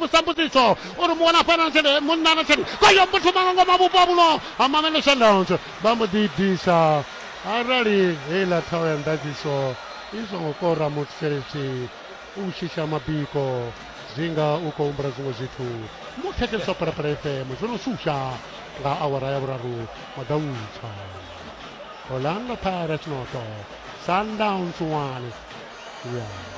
musambudziso uri muwana fana na tshelede munna na tshelede kwayo muthu manga ngo mabupo abulo amamele shandowns vha mbo ḓi disa arali heiḽa thaho ya ndadziso i songo kora muthu tshelede u shisha mabiko zwinga u khou humbula zwiṅwe zwithu muthetshelisa phalaphala fm zwo no shusha nga awara ya vhuraru madautsha orlando pirates noto sundowns one yeah.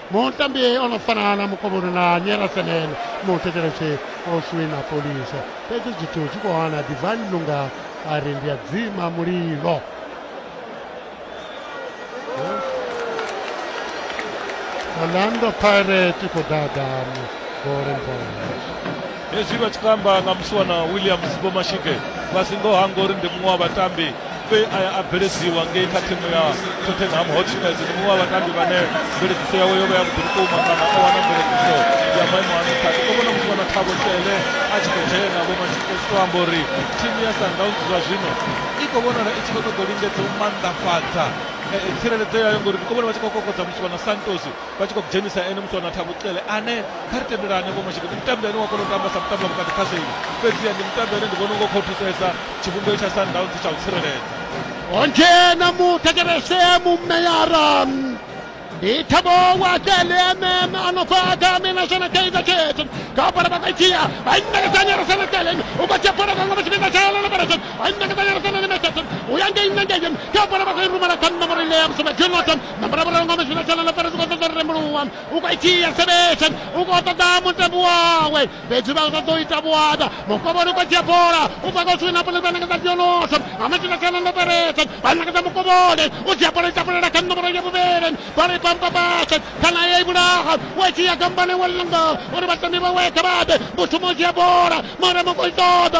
mutambi o no fana na mukovhoni na nyerasenene muthetshelesi o swina polisa fhedzi zwithu zwi khou hana divine lunga a ri ndi a dzima mulilo orlando pirate khou ḓaḓa golden boys hezwi vha tshi kho amba nga musiwana williams vhomashike vha si ngo hangori ndi muṅwe wa vhatambi we a ya a bveledziwa ngei kha thimu ya tottenham hotspurs ndi muṅwe wa vhatambi vhane mveledziso yawe yo vha ya vhuḓi vhukuma kana o wana mveledziso ya maimo a nṱha ndi khou vhona muthu wana thabo tshele a tshi khou dzhena vho manchester to amba uri thimu ya sundowns zwa zwino i khou vhonala i tshi khou ṱoḓa u lingedza u maanḓafhadza tsireledzo yayo ngori ndi khou vhona vha tshi khou kokodza muswa na santos vha tshi khou dzhenisa ene muthu na Thabu Cele ane kha ri tendelane vho mashedu ndi mutambi ane wa kona u tamba sa mutambi wa vhukati kha seli fhedziha ndi mutambi ane ndi vhona unga u khou thusesa tshivhumbeo tsha Sundowns tsha u tsireledza ho dzhena muthetshelese mumeyara ndi Thabo wa Cele ane a no bva kha Minashana Kaizer Chiefs kha bola vha khou dzhia vha ṋekedza Nyarasana Cele u khou dzhia bola vhaṅwe vha tshi fhedza tshalela na bola vha ṋekedza Nyarasana Nyarasana u ya ngei na ngei kha bola vha khou i rumela kha nṋa murele ya musoma Jonathan na muravhuravhu nga mashina tshana na fara zwi khou ṱoḓa ri rembuluwa u khou dzhia sebesan u khou ṱoḓa mutambi wawe fhedzi vha ṱoḓa u ita vhuada mukovhoni u khou dzhia bola u bva kha swini na bola vhanangedza dionoso nga mashina tshana na faresa vhanangedza mukovhoni u dzhia bola itapulela kha nṋomoro ya vhuvhili bola i pampa fhasi kana ya i vhulaha wa dzhia kambane wa langa uri vhatambi vhawe kha vhaḓe mushumo u dzhia bola mara mu khou i ṱoḓa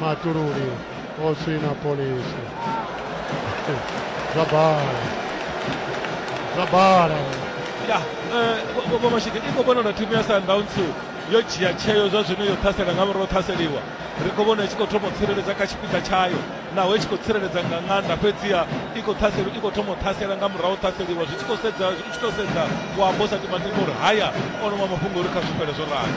Matururi, also in Napolis. Zabar. Zabar. ya vomashike i khou vhona na thimu ya sundowns yo dzhia tsheo zwa zwino yo ṱhasela nga murahu ṱhaseliwa ri khou vhona i tshi khou thoma u tsireledza kha tshipiḓa tshayo naho i tshi khou tsireledza nga ṅanda fhedziha i khou ṱhasela i khou thoma u ṱhasela nga murahu ṱhaseliwa zwi tshi khou sedza zwi tshi khou sedza wa bosa timatimi uri haya o no vha mafhungo uri kha zwifhele zwo rali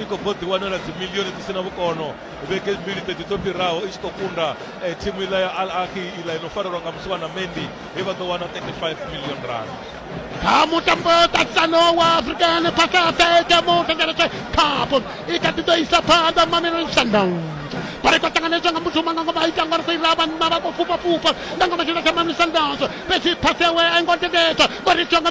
i khou bvo ḓiwanela dzimilioni dzi si na vhukono vhege mbili ṱeḓi dzo fhiraho i tshi khou kunda eh, thimu iḽa ya al ahi iḽa i no farelwa nga musi wana mendi he vha ḓo wana 35 million rand kha mutambo ṱaṱisano wa african pacific mutengeletshe cup i kha ḓi ḓo isa phanḓa mamelodi sundowns vhari khou ṱanganedzwa nga muthu manga ngoma ita ngori fhirira vhanna vha khou fhufhafhufha nga ngoma tshila tsha mamisa ndazo fhedzi phasi yawe a i ngo tendedzwa ngori itiwa nga